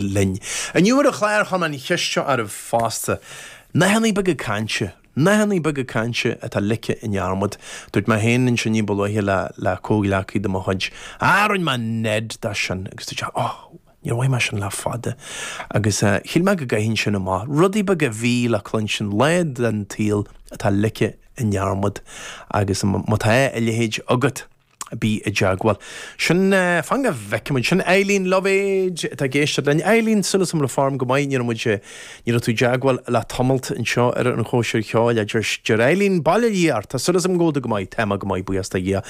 linn. Inniu ar an chlár chuir mé an cheist seo oraibh fosta, nathanna beaga cainte, nathanna beaga cainte atá ligthe i ndearmad. Dúirt mé féin ansin ní ba luaithe le le comhghleacaí de mo chuid, ah, rinne mé nead de sin agus dúirt sé, oh, níor mhoithigh mé sin le fada agus shíl mé go gcaithfinn sin amach. Rudaí beaga a bhí le cluinstin, lá den tsaol atá ligthe i ndearmad agus má tá a leithéid agat, Bí i dteagmháil. Sin, fan go bhfeicimid. Sin Eileen Luibhéad atá ag éisteacht linn. Eileen, súil agam go bhfuil an form go maith. Ní raibh muid, ní raibh tú i dteagmháil le tamalt anseo ar an chóisir cheoil, a deir, deir Eileen. Bail o Dhia ort. Tá súil agam go bhfuil tú go maith. Tá mé go maith, buíochas do Dhia.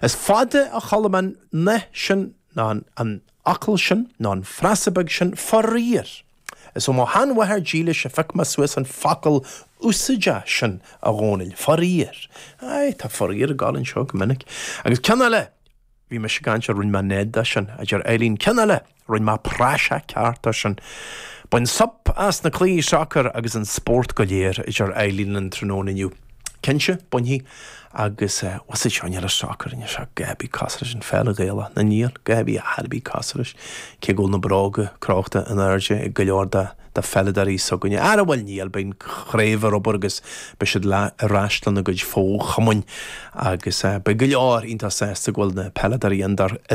Is fada ó chuala mé an, na, sin, na, an, an focal sin, na, an frása beag sin, faraor. Is ó mo shean-mháthair dílis a phioc mé suas an focal úsáideach sin, a Dhomhnaill. Faraor. Aye, tá faraor ag gabháil anseo go minic. Agus ceann eile, bhí mise ag caint ar rinn mé nead de sin, a deir Eileen. Ceann eile, rinn mé praiseach ceart de sin. Bain súp as na cluichí sacair agus an spórt go léir, a deir Eileen linn tráthnóna inniu. Cinnte, bainfidh. agus was it Seáin Ellis soccer anseo Gaby cosúil leis an pheil Ghaelach na níl Gaby a Harby Casares cé go bhfuil na bróga crochta in airde ag go leor de de pheileadóirí s'againne ara bhuel níl bíonn craobh ar obair agus beidh siad ar ais lena gcuid fochumainn agus beidh go leor iontach sásta go bhfuil na peileadóirí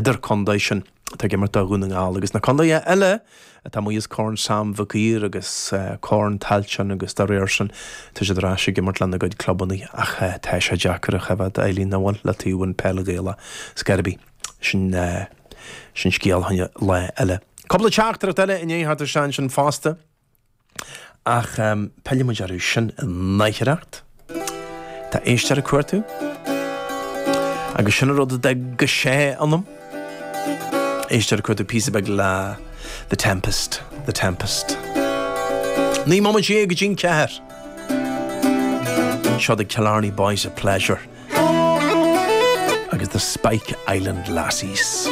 idirchontae sin atá ag imirt do Dhún na nGall agus na contaetha eile atá amuigh as Corn Sam Mhic Uidhir agus Corn Tailteann agus dá réir sin tá siad ar ais ag imirt lena gcuid clubanna ach tá sé deacair a choimhéad a Eileen amhail le taobh an pheil Ghaelach ar scor ar bith sin sin scéal fá choinne lá eile. Cúpla teachtaireacht eile i ndiaidh theacht isteach ansin fosta. Ach pillfidh muid orthu sin in aicearracht. Tá éisteoir ag cuartú. Agus sin an rud a d'fhag go sé ionam. Éisteoir ag cuartú píosa beag le The Tempest, The Tempest. Naoi mbomaite dhéag go dtí an ceathair. Seo The Killarney Boys of Pleasure agus The Spike Island Lassies.